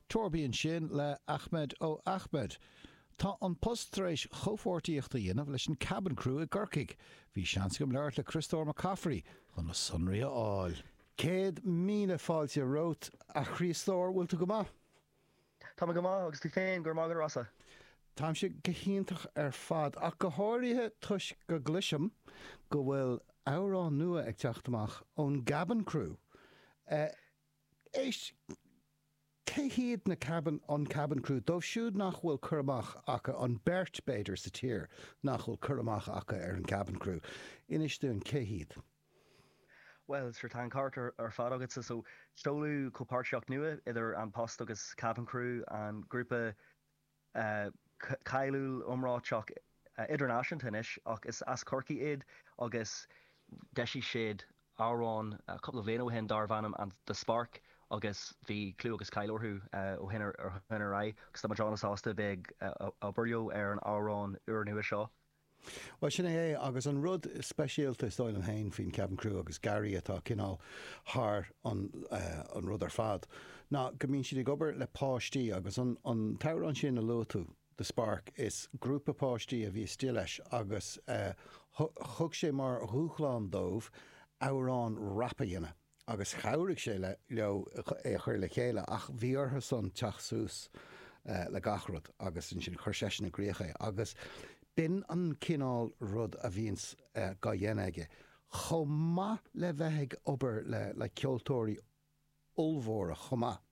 Torby-An sin le Ahmed O Ahmed. Tá An Post tar éis comhpháirtíocht a dhéanamh leis an Cabin Crew i gCorcaigh. Bhí seans agam labhairt le Criostóir Mac Cafraidh chun na sonraí a fháil. Céad míle fáilte romhat, a Chriostóir. Bhfuil tú go maith? Tá mé go maith, agus tú féin? Go raibh maith agat a Rossa. Táimse go hiontach ar fad, ach go háirithe toisc go gcloisim go bhfuil amhrán nua ag teacht amach ón gCabin Crew. Éist, cé hiad na Cabin, an Cabin Crew? Dóibh siúd nach bhfuil cur amach acu, an beirt, b'fhéidir, sa tír nach bhfuil cur amach acu ar an Cabin Crew, inis dúinn cé hiad. Bhuel, sure, tá an ceart ar fad agatsa, so seoladh comhpháirtíocht nua idir An Post agus Cabin Crew, an grúpa cáiliúil iomráiteach idirnáisiúnta anois, ach is as Corcaigh iad, agus d'eisigh siad amhrán cúpla bhliain ó shin darbh ainm The Spark agus bhí clú agus cáil orthu ó shin ar aghaidh, agus táimid an-sásta a bheith ag obair leo ar an amhrán úrnua seo. Bhuel, sin é é. Agus an rud speisialta, is dóigh liom féin, faoin Cabin Crew, agus Gary atá cineál thar an rud ar fad, ná go mbíonn siad ag obair le páistí. Agus an t-amhrán sin a luaigh tú, The Spark, is grúpa páistí a bhí istigh leis agus thug sé mar dhúshlán dóibh amhrán rap a dhéanamh. agus chabhraigh sé leo é a chur le chéile ach bhí orthusan teacht suas le gach rud agus ansin chuir seisean i gcríoch é agus b'in é an cineál rud a bhíonns dá dhéanamh aige chomh maith le bheith ag obair le ceoltóirí ollmhóra chomh maith.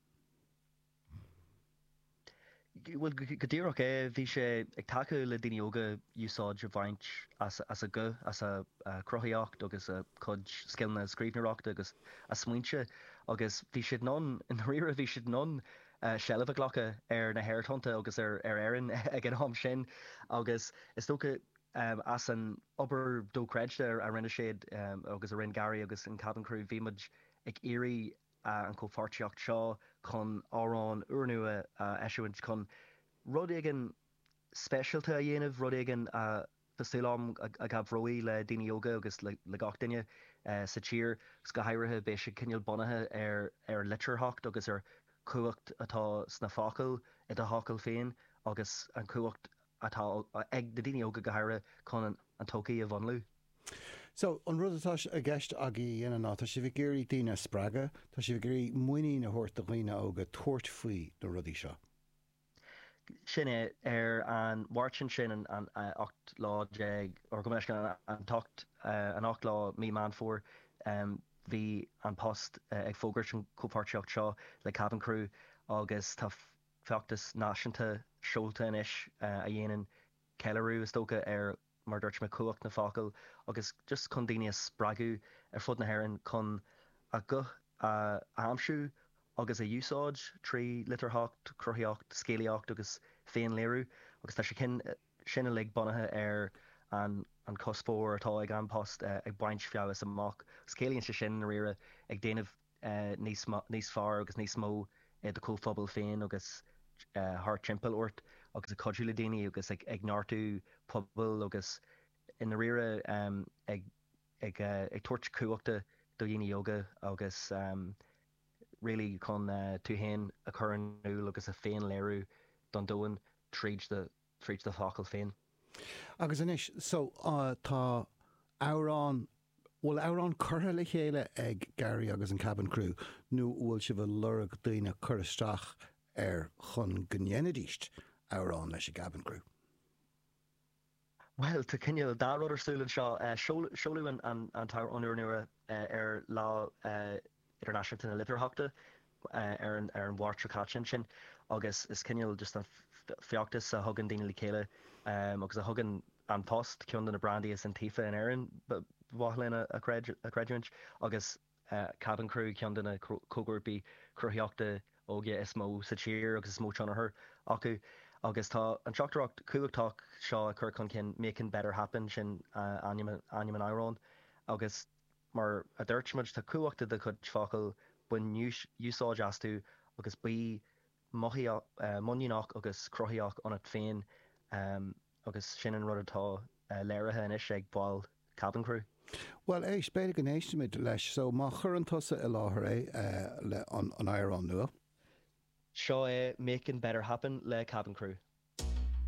Bhuel, go díreach é. Bhí sé ag tacú le daoine óga úsáid a bhaint as a guth, as a cruthaíocht agus a cuid scileanna scríbhneoireachta agus a smaointe. Agus bhí siad in ann, i ndáiríre, bhí siad in ann seilbh a ghlacadh ar na haerthonnta agus ar Éirinn ag an am sin. Agus is dócha, as an obair dóchreidte a rinne siad agus a rinne Gary agus an Cabin Crew, bhí muid ag iarraidh an chomhpháirtíocht seo chun amhrán úrnua a eisiúint, chun rud éigin speisialta a dhéanamh, rud éigin atá súil agam a chabhróidh le daoine óga agus le gach duine sa tír agus go háirithe beidh sé cineál bunaithe ar an litearthacht agus ar chumhacht atá sna focail, i d'fhocail féin agus an chumhacht. atá ag na daoine óga go háirithe chun an todhchaí a mhúnlú. So, an rud atá i gceist agaibh a dhéanamh ná, tá sibh ag iarraidh daoine a spreagadh, tá sibh ag iarraidh muinín a thabhairt do dhaoine óga tabhairt faoi na rudaí seo. Sin é. Ar an Mháirt ansin, an 18 lá, or gabh mo leithscéal, an t-ocht, an 8 lá mí Meán Fómhair, bhí An Post ag fógairt an chomhpháirtíocht seo le Cabin Crew agus tá, feachtas náisiúnta seolta anois a dhéanann ceiliúradh, is dócha, ar, mar a dúirt mé, cumhacht na focail agus just chun daoine a spreagadh ar fud na hÉireann chun a nguth a aimsiú agus a úsáid trí litearthacht, cruthaíocht, scéalaíocht agus féin-léiriú. Agus tá sé sin uilig bunaithe ar an chuspóir atá ag An Post ag baint feabhais amach agus ciallaíonn sé sin, i ndáiríre, ag déanamh. níos fearr agus níos mó i do chomhphobal féin agus thart timpeall ort agus ag cuidiú le daoine agus ag neartú pobail agus i ndáiríre ag tabhairt cumhachta do dhaoine óga agus really chun tú féin a chur in iúl agus a féin-léiriú don domhan tríd do fhocail féin. Agus anois so tá amhrán Bhfuil amhrán curtha le chéile ag Gary agus an Cabin Crew nó bhfuil sibh ag lorg daoine cur isteach air chun go ndéanfaidís amhrán leis an gCabin Crew? Bhuel, tá cineál dá rud ar siúl anseo. Seoladh an t-amhrán úr nua ar Lá Idirnáisiúnta na Litearthachta ar an Mháirt seo caite ansin agus is cineál just an feachtas a thugann daoine le chéile agus a thugann An Post ceann de na brandaí is iontaofa in Éirinn, ba mhaith linn a chreidiúint, agus Cabin Crew ceann de na comhghrúpaí cruthaíochta óga is mó sa tír agus is mó tionchar acu agus tá an teachtaireacht chumhachtach seo a chur chun cinn, 'Making Better Happen', sin ainm an amhráin, agus. Mar a dúirt muid, tá cumhacht i do chuid focail, bain úsáid astu agus bí muiníneach agus cruthaíoch ionat féin agus sin an rud atá léirithe anois ag baill Cabin Crew. Bhuel, éist, b'fhéidir go n-éistfimid leis, so má chuireann tusa i láthair é, an amhrán nua. Seo é Making Better Happen le Cabin Crew.